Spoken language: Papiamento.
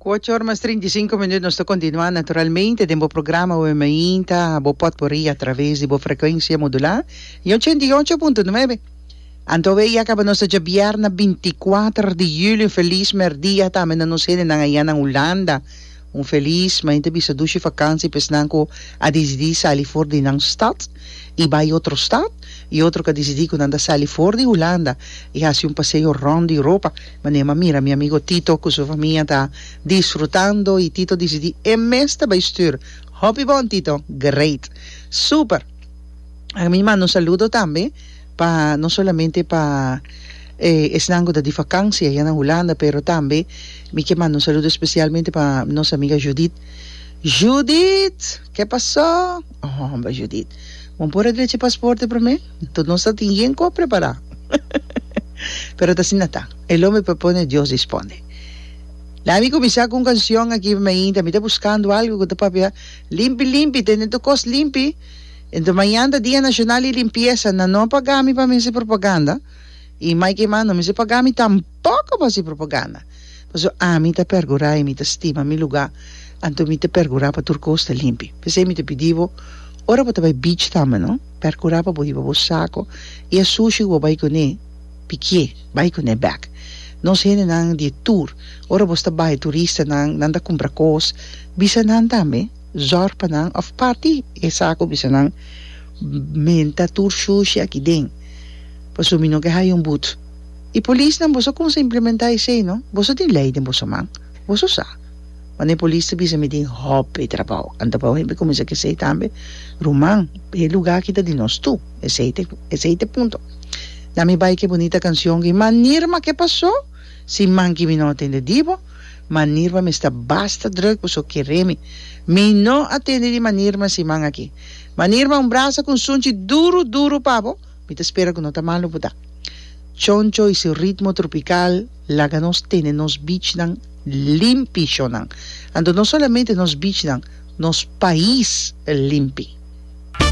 Kuoch or mas trinta i sinku minut nos ta kontinuá naturalmente den bo programa Oe Mainta bo pòt por ri atraves di bo frekuensia modulá i ochenta i ocho punto nuebe. Anto awor ya kaba nos ta dje bièrnè binti kuater di yuli un felis mèrdia tambe na nos hendenan ayá nan Hulanda. Un felis maña ta bisa dushi fakansi pa esnan ku a disidí sali for di nan stat i bai otro stat, i otro ku a disidí ku nan ta sali for di Hulanda i hasi un paseo rònt di Europa. Manera m'a mira mi amigo Tito ku su famia ta disfrutando i Tito disidí e mes ta bai stür. Hopi bon Tito! Great! Super! Ami manda un saludo tambe. pa no solamente pa esnan ku ta di vakansia ya na Hulanda pero tambe mi ke manda un saludo espesialmente pa nos amiga Judith, Judith ke pasó homber Judith bo por a drecha e pasporte promé tur nos ta tin yen ku a prepará pero ta asina ta el homber propone Dios responde lami kuminsá ku un kanshion aki pa mi ainta mi ta buskando algu ku ta papia limpi limpi tene tur kos limpi. Ento mañan ta Dia Nashonal di Limpiesa, nan no pagá mi pa mi hasi propaganda, i mai ke mas no mester pagá mi tampoko pa hasi propaganda, pasobra ami ta pergurá i mi ta stima mi lugá, anto mi ta pergurá pa tur kos ta limpi. P'esei mi ta pidi bo, ora bo ta bai beach tambe no, pergurá pa bo hiba bo sako i e sushi ku bo bai kuné, pikié, bai kuné bèk. Nos hendenan di tur, ora bo ta bai, turistanan, nan ta kumpra kos, bisa nan tambe. Zòrg pa nan òf pati e sa ku bisa nan menta tur shushi aki den pasobra mi no ke haya un but. E polisnan boso kumsa implementá esei no? Boso tin lei den boso man? Boso sa. Wan e polis ta bisa mi tin hòpi trabou anta pa hopi kuminsa ke sei tambe ruman e lugá aki ta di nos tu esei te esei te punto na mi bai ke bonita kansion ki manirma ke pasó si man ki mi no atende di bo? Manir pa mi sta basta druk boso a kere mi. Mi no a tende di manir mas siman aki. Manir ma un brasa ku un sunchi duru duru pa bo, mi ta spera ku no ta malu bo ta. Choncho i su ritmo tropikal laga nos tende nos bichnan limpi shonnan. Anto no solamente nos bichnan, nos pais limpi.